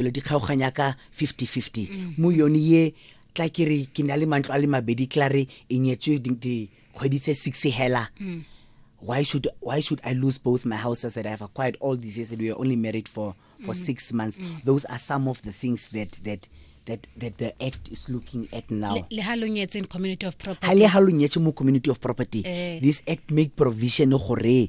pele di kgaoganya ka 50-50 mo yone ye tla ke re ke na le mantlo a le mabedi tla re e nyetswe di- dikgwedi tse six hela why should why should I lose both my houses that I have acquired all these years that we were only married for for six months? Those are some of the things that that that that the act is looking at now. Le- le ha lo nyetse in community of ha property le ha lo nyetse mo community of property Eh. this act make provision gore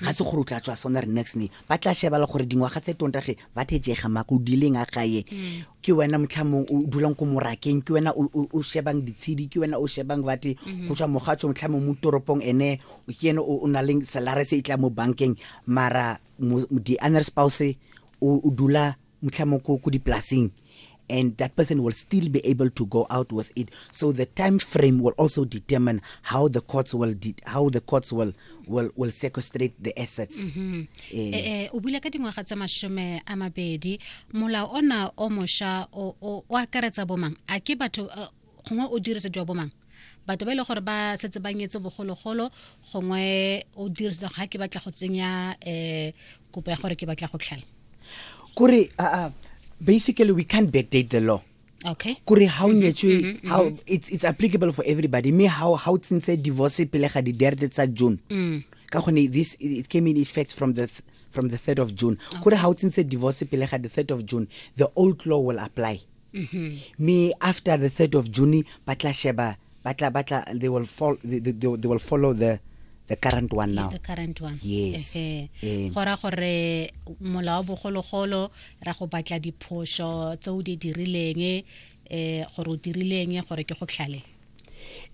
ga se gore o tla tswa sona re next ne ba tla shebala gore dingwaga tse tonta ge ba thejega mako o dileng a gae ke wena motlhamong o dulang ko morakeng ke wena o- o o shebang ditshedi ke wena o shebang bate go tswa mogatso motlhamong mo toropong ene o ke ene o o na leng salare se e tla mo bankeng mara mo- mo- the honor spouse o o dula mtlha mo ko dipolaseng and that person will still be able to go out with it. So the time frame will also determine how the courts will how the courts will will will sequestrate the assets. Mm -hmm. eh, eh, eh o bula ka dingwaga tsa mashome a mabedi molao ona o mosha o o akaretsa bomang a ke batho uh, gongwe o diretse jwa bomang batho ba e le gore ba setse ba nyetse bogologolo gongwe o dirisa ga ke batla go tsenya um kopo ya gore ke batla go tlhala kore aa basically we can't backdate the law okay kore ha o mm-hmm, nyetswe mm-hmm, how mm-hmm. it's it's applicable for everybody me how how tsintse divorce pele ga di derde tsa June mm. ka gone this it came in effect from the from the 3rd of June kore ha o tsintse divorce pele ga the 3rd of June the old law will apply me after the 3rd of june ba tla sheba ba tla ba tla they will follow they, they, they will follow the the current one now the current one yes eh gora gore mola wa bogologolo ra go batla diphoso tse o di dirileng eh gore o dirileng gore ke go tlhale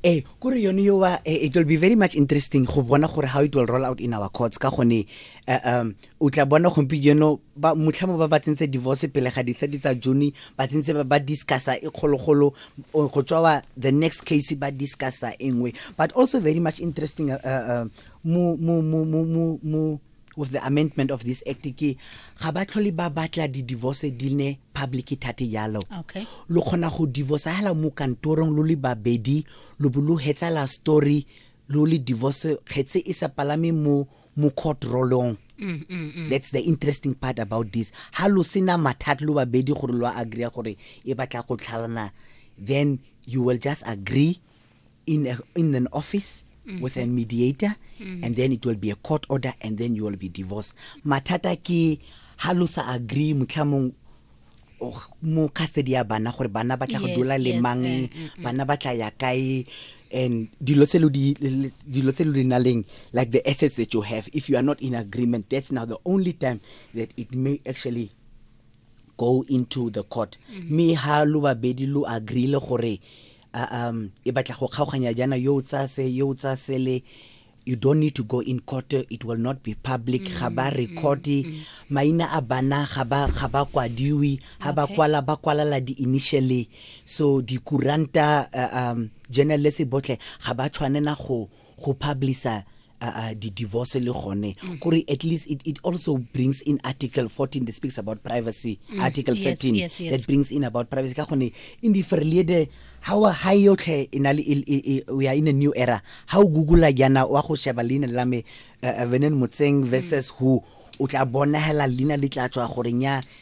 eh kore yone yo wa eh, it will be very much interesting go bona gore how it will roll out in our courts ka gone eh, um o tla bona gompieno ba motlhamo ba ba tsentse divorce pele ga di-thirty tsa june ba tsentse ba ba discussa e kgologolo o- go tswa wa the next case ba discussa e nngwe but also very much interesting uh, uh, mo mo mo mo mo mo With the amendment of this act ke ga ba tlhole ba batla di-divorce di ne public thate jalo Okay. lo kgona go divorce hela mo kantorong lo le babedi lo bo lo hetsala story lo le divorce kgetse e sa palame mo mo court rolong that's the interesting part about this ha lo sena mathata lo babedi gore lo agree gore e batla go tlhalana then you will just agree in, a, in an office mm. with a mediator mm. and then it will be a court order and then you will be divorced mathata ke ha lo sa agree motlhamong oh, mo custody ya bana gore bana ba tla go dula le mang eh, eh, eh. bana ba tla ya kae and dilo tse lo di dilo tse lo di naleng like the assets that you have if you are not in agreement that's now the only time that it may actually go into the court mm-hmm. me ha lo babedi lo agree le gore um e batla go kgaoganya jana yo o tsaya se yo o tsaya sele you don't need to go in court it will not be public mm-hmm. ga ba record mm-hmm. maina a bana ga ba ga ba kwadiwi ha ba kwala ba kwalala di initially so di kuranta uh, um journalist botle ga ba tshwanela go go publisher uh, uh, the divorce le gone mm. kore at least it, it also brings in article 14 that speaks about privacy mm. article 13 yes, yes, yes. that brings in about privacy ka gone in the ferliede how ha yotlhe e na le we are in a new era how google yana wa go sheba leina la me uh, uh, venen motseng versus mm. who o tla bonagela leina le tla tswa gore nya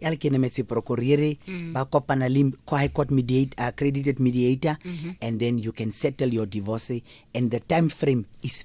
ya le kenemetse procurere mm. ba kopana le high court mediate, uh, accredited mediator mm -hmm. and then you can settle your divorce and the time frame is